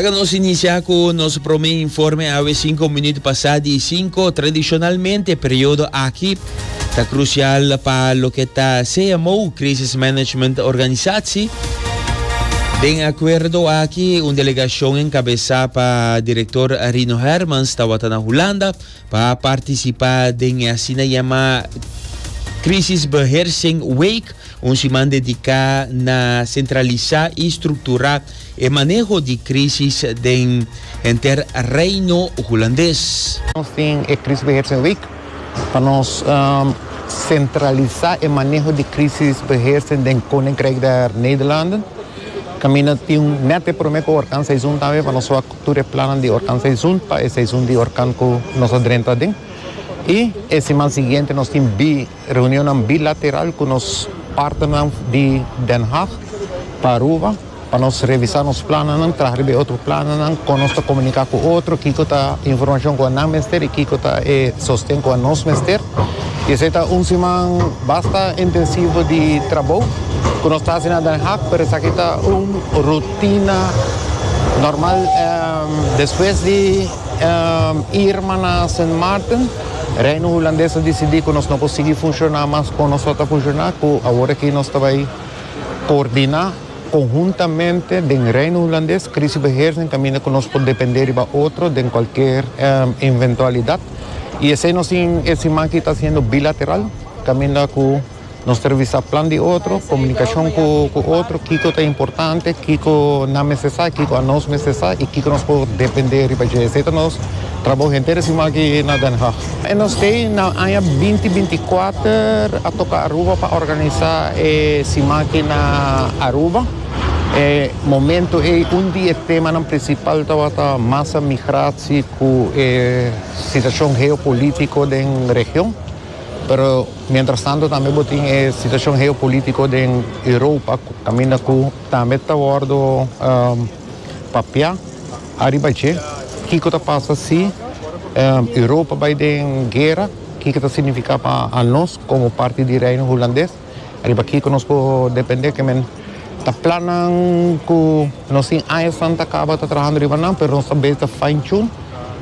Laga nos inicia cu nos prome informe awe cinco minuut pasa di cinco. Tradicionalmente e periodo aki ta crucial pa loke ta CMO, Crisis Management Organisatie. Den acuerdo aki un delegacion encabesa pa Director Rino Hermans tawata na Hulanda. pa participa den e asina yama Crisisbeheersing Week, un siman dedica na centralisa y structura e maneho di crisis den henter Reino Hulandes. Nos tin e Crisisbeheersing Week pa nos centralisa e maneho di crisisbeheersing den Koninkrijk der Nederlanden. Caminda tin net e prome coworkan seizoen tambe pa nos tur e plannan di orkan seisun pa e seisun di orkan ku nos a drenta aden. I e siman siguiente nos tin bi reunionnan bilateral ku nos partnernan di Den Haag pa Aruba pa nos revisa nos plannan, traha riba e otro plannan, kon nos ta komunika ku otro, kiko ta e informashon ku nan mester i kiko ta e sosten ku anos mester. Y esey ta un siman basta intensivo di trabou cu nos ta haci na Den Haag, pero esaki ta un rutina normal. Despues di Irma na Sint Maarten, Reino Hulandes a dicidi cu nos no por sigui funciona mas como nos lo ta funciona, cu awor aki nos ta bay coordina. Konhuntamente den Reino Hulandes, Krisibeheersing ta mina ku nos por dependé riba otro den kualker eventualidat, i esei nos tin e siman aki ta hasiendo bilateral kaminda ku nos ta revisá plan di otro, komunikashon ku otro, kiko ta importante, kiko nan mester sa, kiko anos mester sa i kiko nos por dependé riba dje. Esei ta nos trabou henter e siman aki na Den Haag. E nos t'ei na aña binti binti kuater a toka Aruba pa organisá e Simaki na Aruba. E momentu ei un di e temanan prinsipal tabata masa migratie ku e situashon geopolitiko den region. Pero miéntras tantu tambe bo tin e situashon geopolitiko den Europa kaminda ku tambe ta wòrdu papiá. Ariba dje, kiko ta pasa si Europa bai den guera? Kiko ta signifiká pa anos komo parti di Reino Hulandes? Ariba kiko nos por dependé ke men ta plannan ku nos tin añanan ta kaba ta trahando riba nan, pero nos ta beta fine-tune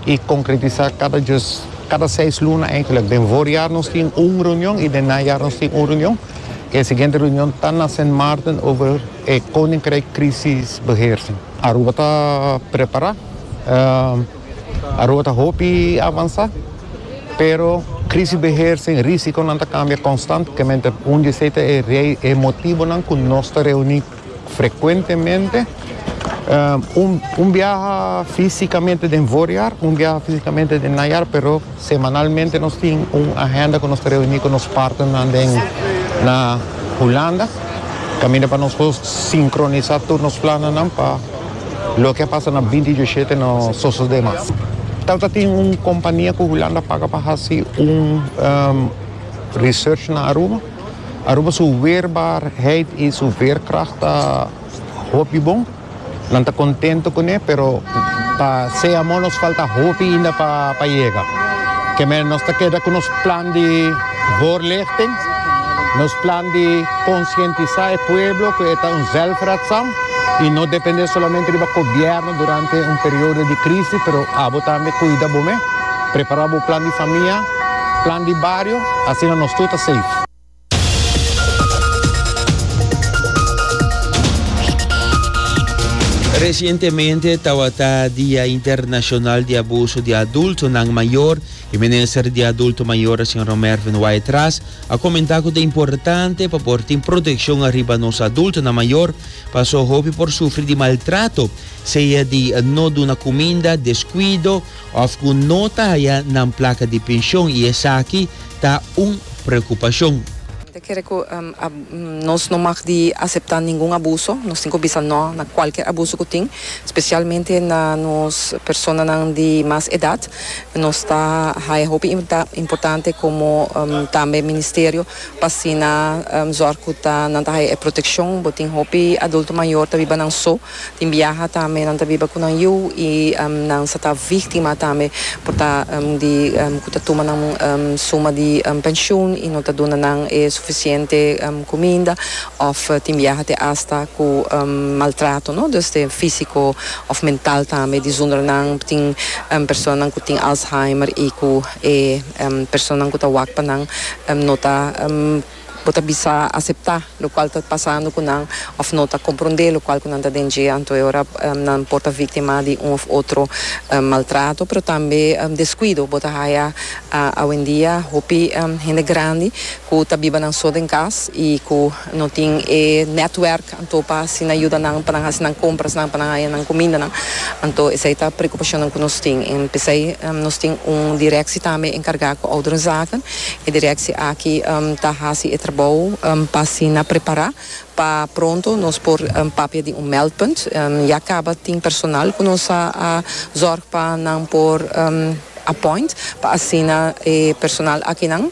i konkretisá kada djus, kada seis luna eindelijk. Den vòrjàr nos tin un reunion i den najàr nos tin un reunion. E siguiente reunion ta na Sint Maarten over e Koninkryk Krisisbeheersing. Aruba ta prepará. Aruba ta hopi avansá, pero krisisbeheer sin rísikonan ta kambia konstantemente. Un di esei ta e motibonan ku nos ta reuní frekuentemente. Un biaha físikamente den voorjaar, un biaha físikamente den najaar, pero. Semanalmente nos tin un agenda cu nos ta reuni cu nos partnernan den na Hulanda caminda pa nos por sincronisa tur nos plannan pa loke a pasa na binti dieshete no sosode mas. Tal ta tin un compania cu Hulanda paga pa haci un research na Aruba. Aruba su weerbaarheid y su veerkracht ta hopi bon. Nan ta contento cune, pero pa sea mo nos falta hopi inda pa yega. Keme nos ta keda cu nos plan di voorlichting, nos plan di conscientisa e pueblo cu e ta un zelfredzaam y no depende solamente riba gobierno durante un periodo di crisis, pero abo tambe cuida bo mes, prepara bo plan di famia, plan di bario, asina nos tur ta safe. Resientemente tawata Dia Internashonal di Abuso di Adultonan Mayor i Minister di Adulto Mayor, Señor Mervin Wyatt Ras, a komentá ku ta importante pa por tin protekshon ariba nos adultonan mayor paso hopi por sufri di maltrato, sea di no duna kuminda, deskuido, òf ku no ta haya nan plaka di penshon i esaki ta un preokupashon. Ta kere ku nos no mag di aseptá ningun abuso. Nos tin ku bisa nò na kualker abuso ku tin, spesialmente na nos personanan di mas edat. Nos ta haya hopi importante komo tambe ministerio pa asina zòrg ku ta nan ta haya e protekshon. Bo tin hopi adulto mayor ta biba nan so. Tin biaha tambe nan ta biba cu nan yu y nan sa ta victima tambe por ta di cu ta tuma nan suma di pensioen y no ta duna nan e suficiente cuminda of tin biaha te hasta cu maltrato no dus te fisico of mental tambe di zonder nan tin personanan cu tin Alzheimer y cu e personanan cu ta wak pa nan no ta Bo ta bisa aseptá lokual ta pasando ku nan òf no ta komprondé lokual ku nan ta den dje. Anto e ora nan por ta víktima di un òf otro maltrato, pero tambe deskuido. Bo ta haya awendia hopi hende grandi ku ta biba nan so den kas i ku no tin e nètwèrk. Anto pa asina yuda nan pa nan hasi nan comprasnan, pa nan haña nan cumindanan. Anto esey ta preocupacionnan cu nos tin. En p'esey nos tin un directie tambe encarga cu ouderenzaken. E directie aki ta hasi e trabou pa asina prepara pa pronto nos por papia di un meldpunt. Ya caba tin personal cu nos a zorg pa nan por appoint pa asina e personal akinan.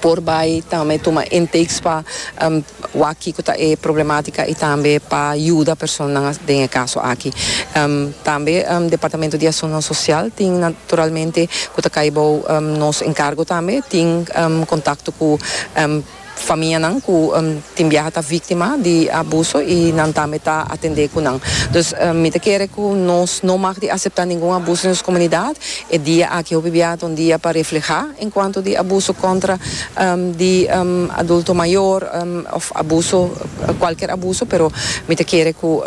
por bai tambe tuma intakes pa wak kiko ta e problematica y tambe pa yuda personanan den e caso aki. Tambe Departamento di Asuntonan Social tin naturalmente cu ta cay bao nos encargo tambe tin contacto cu famianan cu tin biaha ta victima di abuso y nan tambe ta atende cu nan. Dus mi ta kere cu nos no mag di acepta ningun abuso den nos comunidad E dia aki hopi bia ta un dia pa reflehá enkuanto di abuso kontra di adulto mayor òf abuso, kualker abuso, pero mi ta kere ku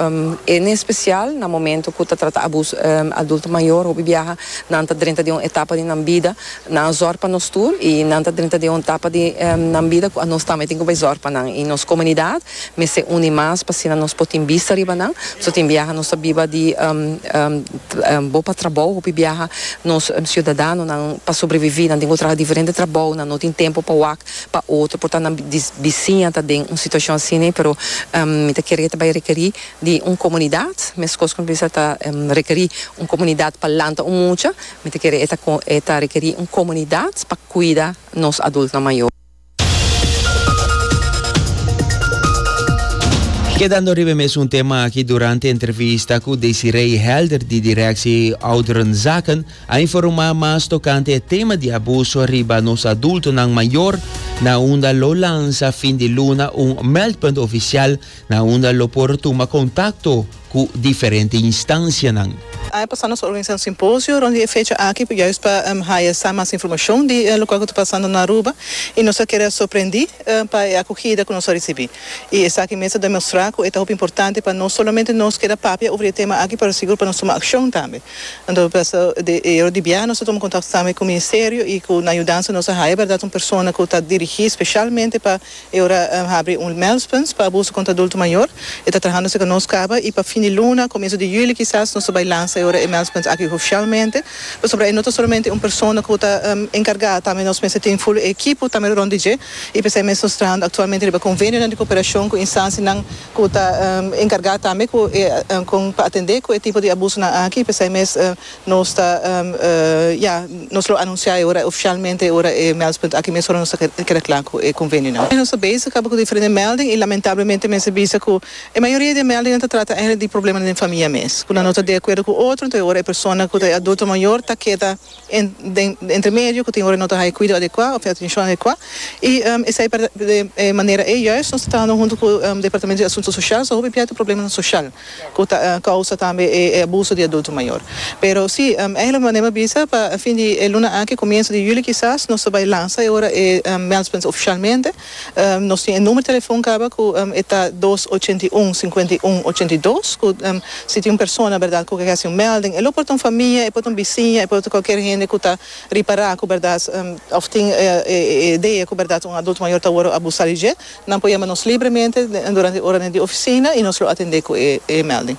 en espesial na momentu ku ta trata abuso adulto mayor hopi biaha nan ta drenta den un etapa di nan bida nan a zòr pa nos tur i nan ta drenta den un etapa di nan bida ku a nos tambe tin ku bai zòr pa nan i nos komunidat Mester uni mas pa asina nos por tin bista riba nan. So tin biaha nos ta biba di bo pa trabou. Hopi biaha nos ciudadanonan pa sobrevivi nan tin ku traha diferente trabou, nan no tin tempo pa wak pa otro por ta nan bisiña ta den un situacion asina. Pero mi ta kere ke ta bai rekeri di un comunidad meskos ku mi bisa ta rekeri un comunidad pa lanta un mucha, mi ta kere e ta rekeri un comunidad pa kuida nos adultonan mayor. Kedando riba e mesun tema aki, durante entrevista ku Desiree Helder di direksi Ouderenzaken a informá mas tokante e tema di abuso riba nos adultonan mayor na unda lo lansa fin di luna un meldpunt ofisial na unda lo por tuma kontakto cu diferente instancianan. Aña pasá nos a organizá un simposio rond di e fecha aki juist pa haya sa mas informacion di locual cu ta pasando na Aruba y nos a keda sorprendí pa e acogida cu nos a ricibí. Y esaki mes a demostrá cu e ta hopi importante pa no solamente nos keda papia over e tema aki pero sigur pa nos tuma accion tambe. Anto paso di e ora di biaha nos a tuma contacto tambe cu Ministerio y cu nan yudansa nos a haya berdad un persona cu ta dirigí specialmente pa E ora habri un Melspuns pa abuso contra adulto mayor. E ta trahando seca nos caba y pa fin di luna, comienzo di juli kisas nos ta bay lansa e ora e Melspuns aki hoficialmente. Pasobra e no ta solamente un persona cu ta encarga, tambe nos mester tin full e equipo tambe rond di dje y p'esey mes nos trahando actualmente riba convenionan di cooperacion cu instancianan cu ta encarga tambe cu e con pa atende cu e tipo di abusonan aki y p'esey mes Nos ta ya, nos lo anunciae ora oficialmente ora e meldspunt aki mes ora nos ta keda cla cu e convenio nan. Nos ta bezig caba cu diferente melding y lamentablemente mester bisa cu e mayoria di e melding nan ta trata eigenlijk di probleman den famia mes cu nan no ta di acuerdo cu otro entonces ora e persona cu ta e adulto mayor ta keda den entre medio cu tin ora no ta haya cuido adecua of atencion adecua y esey per e manera ey juist nos ta trahando hunto cu departamento di asunto social so hopi bia ta probleman social. cu ta causa tambe e abuso di adulto mayor. Pero si, eigenlijk manera mi a bisa, pa fin di e luna aki, comienzo di juli kisas, nos ta bay lansa e ora e Meldpunt oficialmente. Nos tin e numero telefon caba cu e ta dos ochenta i un, cincuenta i un, ochenta i dos, cu si tin un persona, berdad, cu a haci un melding, e lo por ta un famia, e por ta un bisiña, e por ta cualkier hende cu ta ripara cu berdad, of tin e idea cu berdad un adulto mayor ta worde abusa di dje. Nan por yama nos libremente durante e oranan di oficina y nos lo atende cu e melding.